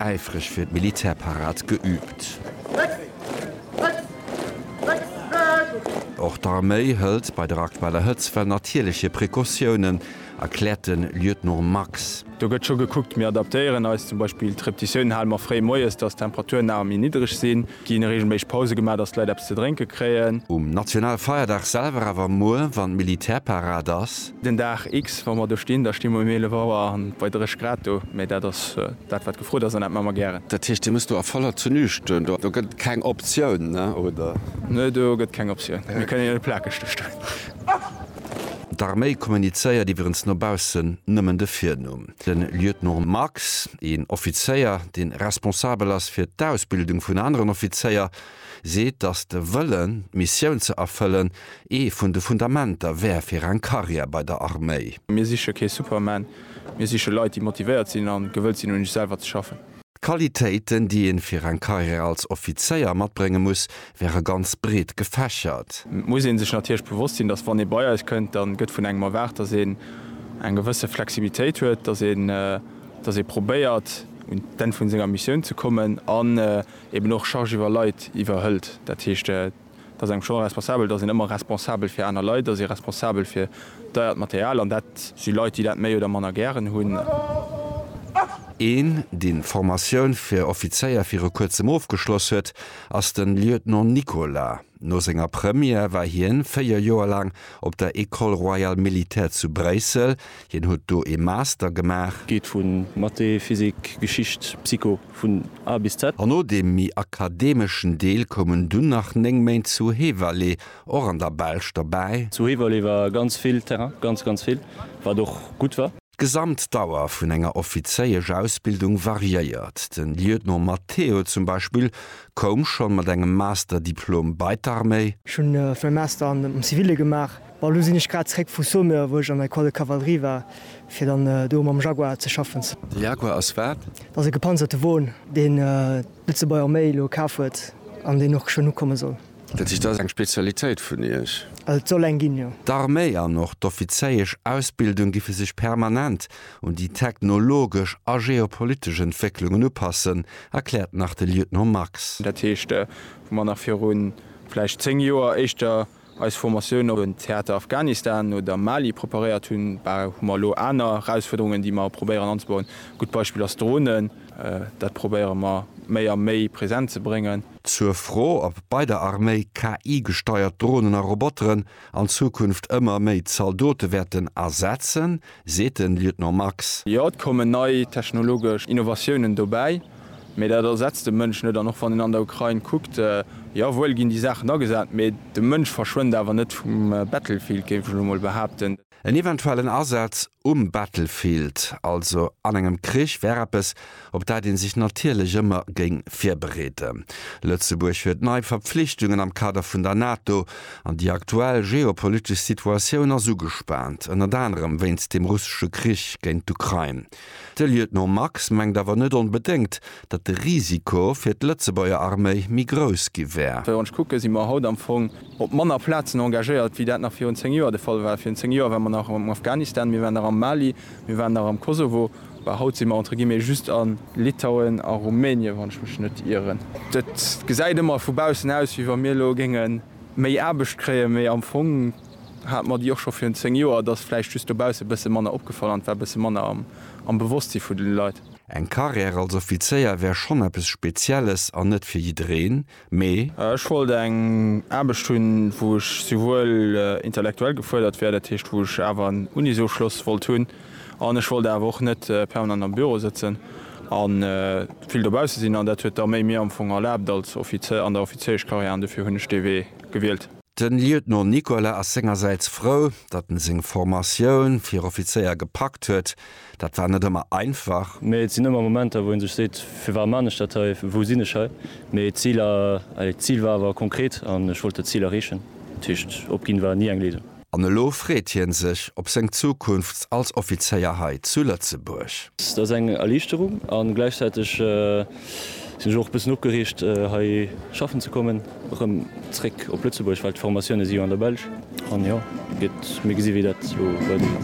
äifreg fir d'Militärparad geüübt. Och d'Arméi hëlt bei der aktueller Hëtztwell natierlech hir Precautiounen, erkläert de Lieutenant Max. Do gëtt scho gekuckt. Mir adaptéieren eis zum Beispill d'Reptitioun, hale mer fréi moies, datt d'Temperature nawer méi niddreg sinn. Gi reegelméisseg Pause gemaach, datt d'Leit eppes ze drénke kréien. Um Nationalfeierdag selwer, awer muer, wann Militärparad ass. Den Dag X, wa mer do stinn, da sti mer um 11 Auer an bei 30 Grad do. Mee dat ass dat, wat gefrot ass an dat maache mer gären. Dat heescht, Dir musst do a voller Tenue stoen? Do gëtt keng Optioun, oder? Nee, do gëtt keng Optioun. Mir kënnen jo net plakeg do stoen. D'Arméi kommunizéiert iwwerens no baussen nëmmen de Virnumm. De Lieutenant Marx, een Offizéier, dee responsabel ass fir d'Ausbildung vun aneren Offizéier, seet, datt de Wëllen, d'Missioun ze erfëllen, ee vun de Fundamenter wär fir eng Karriär bei der Arméi. Mir siche kee Superman, mir siche Leit, déi motivéiert sinn a gewëllt sinn, un iech selwer ze schaffen. D'Qualitéiten, déi ee fir eng Karriär als Offizéier matbrénge muss, wäre ganz breet gefächert. Et muss ee sech natierlech bewosst sinn, datt wann ee bei eis kënnt, da gëtt vun engem erwaart, datt een eng gewësse Flexibilitéit huet, datt ee probéiert un d'Enn vu senger Missioun ze kommen an eeben och Charge iwwer Leit iwwerhëlt, dat heescht, Et ass engem schonn responsabel, dass een ëmmer responsabel fir aner Leit ass, ee responsabel fir deiert Material, an dat si Leit, déi dat méi oder manner gären hunn. Een, deen d'Formatioun fir Offizéier viru kuerzem ofgeschloss huet, ass de Lieutenant Nicolas. No senger Première war hien 4 Joer laang op der École royale militaire zu Bréissel. Hien huet do ee Master gemaach. Geet vun Mathé, Physik, Geschicht, Psycho. Vun A bis Z. An no deem méi akademeschen Deel koumen dunn nach 9 Méint zu Heverlee, och an der Belsch, derbäi. Zu Heverlee war ganz vill Terrain, ganz, ganz vill, wat och gutt war. D'gesamt Dauer vun enger offizéiesch Ausbildung variéiert. De Lieutenant Matteo zum Beispill koum schonn mat engem Master-Diplom bei d'Arméi. Ech hunn vun engem Master am Zivile gemaach. Bon, elo sinn ech grad zréck vu Saumur, wou ech an der Ecole de Cavalerie war, fir dann do mam Jaguar ze schaffen. De Jaguar ass wat? Dat ass e gepanzerte Won, deen d'Lëtzebuerg Arméi elo kaf huet an deen och schonn ukomme soll. Dat heescht, dat ass eng Spezialitéit vun Iech? Et soll eng ginn, jo. D'Arméi an och d'offizéiesch Ausbildung giffe sech permanent un déi technologesch a geopolitesch Entwécklungen upassen, erkläert nach de Lieutenant Max. Dat heescht, wou mer nach virun vläicht zéng Joer éischter eis Formatioun op en Theater Afghanistan oder Mali preparéiert hunn, hu mer elo aner Erausfuerderungen, déi mer probéieren anzebauen. E gutt Beispill ass Dronen. Dat probéiere mer méi a méi present ze bréngen. Zur Fro, ob bei der Arméi KI-gesteiert Dronen a Roboteren an Zukunft ëmmer méi Zaldote wäerten ersetzen, seet de Lieutenant Max. Jo, et kommen nei technologesch Innovatiounen dobäi, mee dat ersetzt de Mënsch net. An och wann een an der Ukrain kuckt, jo wuel ginn déi Saachen agesat, mee de Mënsch verschwënnt awer net vum Battlefield, géif ech elo mol behaapten. En eventuellen Asaz um Battlefield, also an engem Krich, wär eppes, op dat ee sech natierlech ëmmer géing virbereeden. Lëtzebuerg huet nei Verpflichtungen am Kader vun der NATO, an déi aktuell geopolitesch Situatioun ass ugespaant, ënnert anerem wéinst dem russesche Krich géint d'Ukrain. De Lieutenant Max mengt awer net onbedéngt, datt de Risiko fir d'Lëtzebuerger Arméi méi grouss gi wär. Wann ech kucke si mer haut am Fong op manner Plazen engagéiert, wéi dat nach virun zéng Joer de Fall war. Virun zéng Joer ware mer nach am Afghanistan, mir waren nach am Mali, mir waren nach am Kosovo. Well haut si mer entre guillemets just a Litauen a Rumänien, wann ech mech net ieren. Et gesäit ëmmer vu baussen aus, wéi wa mir elo géinge méi Aarbecht kréien, mee am Fong hate mer déi och scho virun zéng Joer. Et ass vläicht just dobausse bësse manner opgefall an et war bësse manner am Bewosstsi vun de Leit. Eng Carrière als Offizéier wär schonn eppes Spezielles an net fir jiddereen. Mee. Ech wollt eng Aarbecht hunn, wou ech souwuel intellektuell gefuerdert wär, dat heescht, wou ech awer en Unisofschloss wollt hunn, an ech wollt awer och net permanent am Büro sëtzen a vill dobausse sinn. An dat huet d'Arméi mir am Fong erlaabt als Offizier an der Offiziereschkarriär, an dofir hunn ech dee Wee gewielt. De Lieutenant Nicolas ass sengersäits frou, datt en seng Formatioun fir Offizéier gepackt huet, Dat war net ëmmer einfach. Mee et sinn ëmmer Momenter, wou ee sech seet, Firwat man ech dat hei? Wou sinn ech hei? Mee d'Ziler, allez, d'Zil war awer konkret an ech wollt dat Zil erreechen. Dat heescht, opginn war ni eng Léisung. An elo freet hien sech op seng Zukunft als Offizéier hei zu Lëtzebuerg. Dat ass eng Erliichterung an gläichzäiteg sinn ech och e bëssen opgereegt hei schaffen ze kommen. Rëm zréck op Lëtzebuerg, well d'Formatioune si jo an der Belsch an jo, et gëtt, mir gesi wéi dat elo weidergeet.